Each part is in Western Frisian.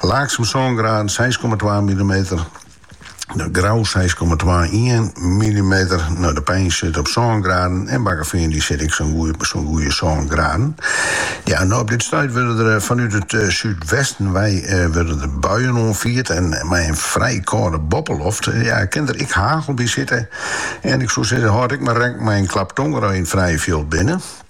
Laaksum sân graden, seis komma twa millimeter, Grou seis komma twaentweintich millimeter, no De Pein sit op sân graden en Bakkeveen dy sit ek op sa'n goede sân graden. Ja, no op dit stuit wurde der fanút it súdwesten wei wurde der buien oanfierd en mei in frij kâlde boppeloft ja, kin der ek hagel by sitte en ik soe sizze hâld ek mar rekken mei in klap tongere as je yn it frije fjild binne.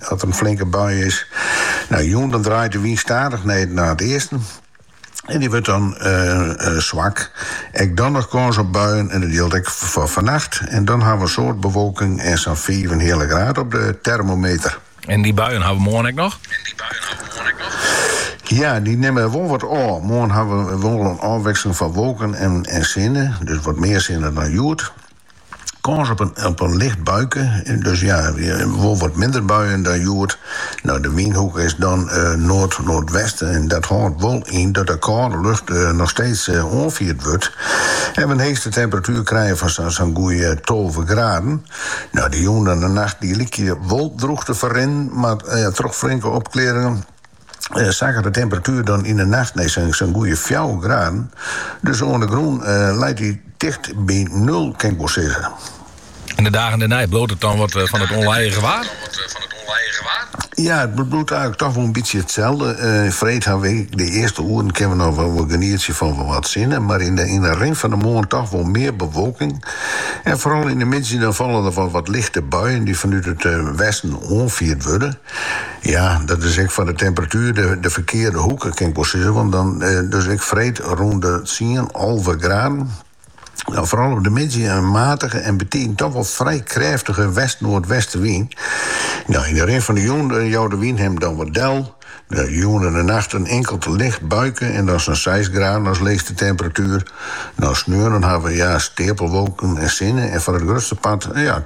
Dat in flinke bui is. No jûn dan draait de wyn stadich nei nei it easten en dy wurdt dan swak. Ek dan noch kâns op buien en dat jildt ek foar fannacht. En dan hawwe we in soad bewolking en sa'n fiifenheale graad op de termometer. En dy buien hawwe we moarn ek noch? Ja, dy nimme wol wat ôf. Moarn hawwe we wol in ôfwikseling fan wolken en sinne, dus wat mear sinne dan hjoed. Kâns op in op in licht buike, dus ja, wol wat minder buien dan hjoed. No, de wynhoek is dan noard-noardwesten en dat hâldt wol yn dat de kâlde lucht noch steeds oanfierd wurdt en we in heechste temperatuer krije fan sa'n goede tolve graden. No, de jûn en de nacht dy lykje wol droech te ferrinnen, mar troch flinke opklearringen. sakket de temperatuer dan yn 'e nacht nei sa'n goede fjouwer graden. Dus oan de grûn leit dy ticht by nul, kin ik wol sizze. En de dagen dêrnei, bliuwt it dan wat fan it ûnlijige waar? Ja, it bliuwt eigenlik toch wol in bytsje itselde. Freed hawwe wy de earste oeren kinne we noch wol genietsje fan wol wat sinne, mar yn de rin fan de moarn toch wol mear bewolking. En foaral yn 'e middei dan falle der wol wat lichte buien dy't fanút it westen oanfierd wurde. Ja, dat is ek foar de temperatuer de, de ferkearde hoeke, kin ik wol sizze. Want dan, eh, dus ek freed rûn de tsien, alve graden. Dan foaral op de middei in matige en betiden toch wol frij krêftige west-noardwestenwyn. Nou, yn de rin fan de jûn eh, jout de wyn him dan wat del. De jûn en de nacht in inkeld licht buike en dan sa'n seis graden as leechste temperatuer. Nou, sneon dan hawwe we ja steapelwolken en sinne en foar it grutste part, ja,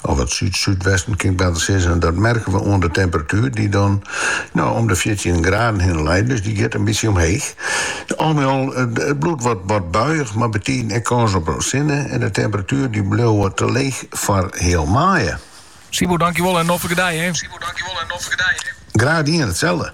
Of it súd-súdwesten kin ik better sizze. Dat merke we oan de temperatuer dy't dan no om de fjirtjin graden hinne leit. Dus dy giet in bytsje omheech. Al mei al, it bliuwt wat buiich mei betiden ek kâns op sinne en de temperatuer dy bliuwe te leech foar heal maaie. Sibo, dankjewol en noflike dei, hê! Graach dien, itselde!